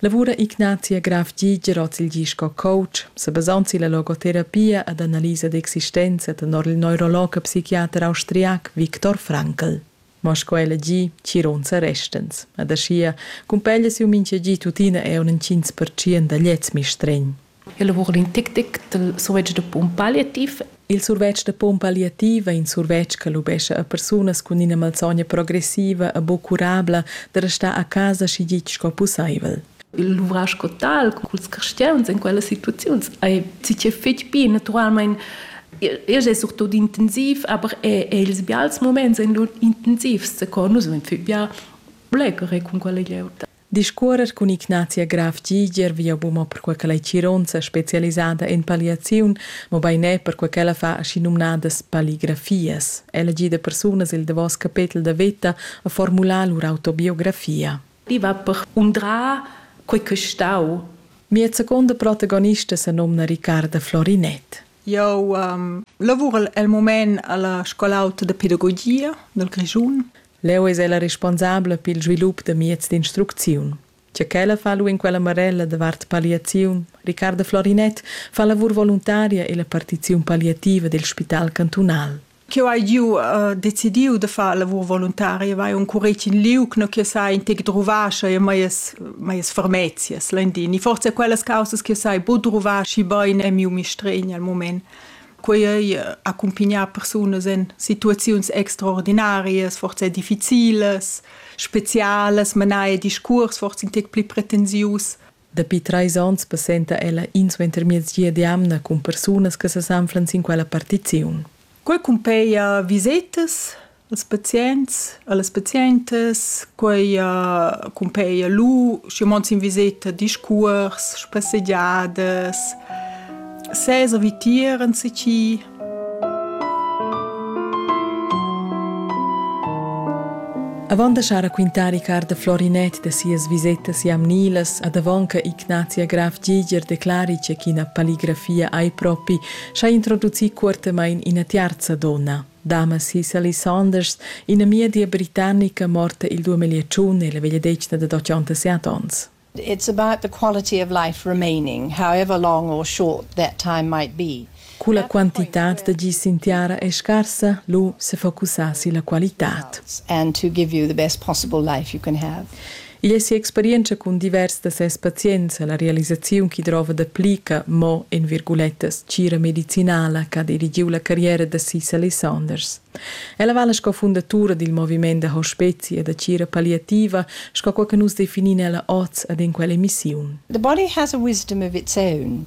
Lavura Ignazia Graf Giger hoz il di sco coach, sa basand silla logoterapia ed analisa d'existenza tenor il neurolog e psichiater austriac Viktor Frankl. Ma sco ella gi, chironza restens. Ed aschia cumpeglia siu mincha gi tuttina eir un 5% da gliez mistregn. El lavura in tic tic dal survetsch da pump palliativ. Il survetsch da pump palliativ è in survetsch che lubescha a persunas cun ina malsogna progressiva e buc curabla da restar a casa schi gitg sco pusseivel. Il luvrar sco tal culs cristians en quellas situaziuns ei tier fetg bi naturalmein Igl è surtut intensiv, aber è, è ils bials moments en lur intensivs, co nus vegn bia bler cun quella glieud. Discuorrer cun Ignazia Graf Giger via buma perquai ch'ella ei chironza specialisada en palliaziun, mobein er perquai ch'ella fa aschinumnadas palligrafias. Ella gida persunas el davos capetel da veta a formular lur autobiografia. I va per undrar quei ch'ei stau. Mia seconda protagonista senomna Riccarda Florinett. Jau lavurel el mument a la Scol'auta da pedagogia dal Grischun. Leu eis ella responsabla pil svilup da mieds d'instrucziun. Tgei ch'ella fa lu en quella marella davart palliaziun, Riccardo Florinet fa lavur voluntaria ella partiziun palliativa dil spital cantunal. Cheu hai giu uh, decidiu da far lavur voluntaria, vai un curec in liug, no che sai in tec druvascha e maies maies fermezias, lendin. E forse quellas causas che sai bu druvaschi bein è miu mistregn al moment. Quei ei accumpignar persunas en situaziuns extraordinarias, forse difficiles, specialas, menai discurs, forse in tec pli pretensius. Dapi treis onns passenta ella insuentermiezgia d'jamna cun persunas che sesanflan sin quella partiziun. Quei cumpeia visetas, Ils pazients e las pazientas, quei cumpeia lu, schi mond sin viseta, discuors, spassegiadas, sesa vitier enzatgi. Avant da schar raquintar Riccardo Florinet da sias visetas jamnilas ad avonca Ignatia Graf Giger declari che ch'ina paligrafia ei propi, schai introducir cuortamain ina tiarza donna. Damas Sally Saunders, inamiedi britannica morta il duemigliatschiun e la vegliadetgna dad ottantasset onns. It's about the quality of life remaining, however long or short that time might be. Cu la quantitad da gi sin tiara è scarsa, lu sefocusar silla qualitad. And to give you the best possible life you can have. Igl è si'experientscha cun divers da ses pazients e la realisaziun ch'i drova dapli che mo en virgulettas tgira medicinala ch'ha dirigiu la carriera da Cicely Saunders. Ella vala sco fundatura dil moviment da hospezi e da tgira palliativa, sco quei che nus definin ella oz ed en quell'emissiun. The body has a wisdom of its own,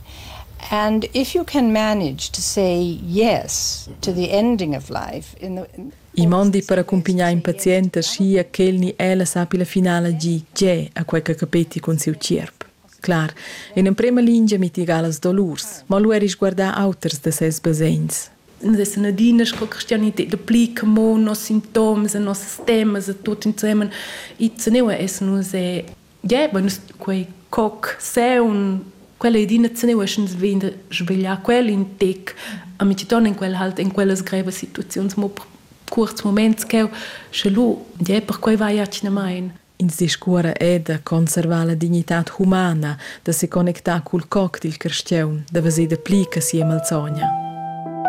and if you can manage to say yes to the ending of life in the I mondi per accumpignar in pazient aschia ch'el ni ella sappi la finala gir tgè a quei che capetti cun siu tgierp. Clar, in emprema lingia mitiga las dolurs, mo lu eri sguardar auters da ses basegns. Nus essan adina sco cristianitad da pli che mo nos sintoms e nossas temas e tut insemen. E teneua essan nus e yeah, bueno, quei coc, seun, quella è adina zeneueschens vegn da svegliar quel in tec, a mi ton in quel halt in quellas grevas situaziuns mo curts moments cheu, sche lu, yeah, per quei vai accinamain. In siscuora è da conservar la dignitad humana, da se connectar cul coc dil carstiaun, da veser da pli che sia malsogna.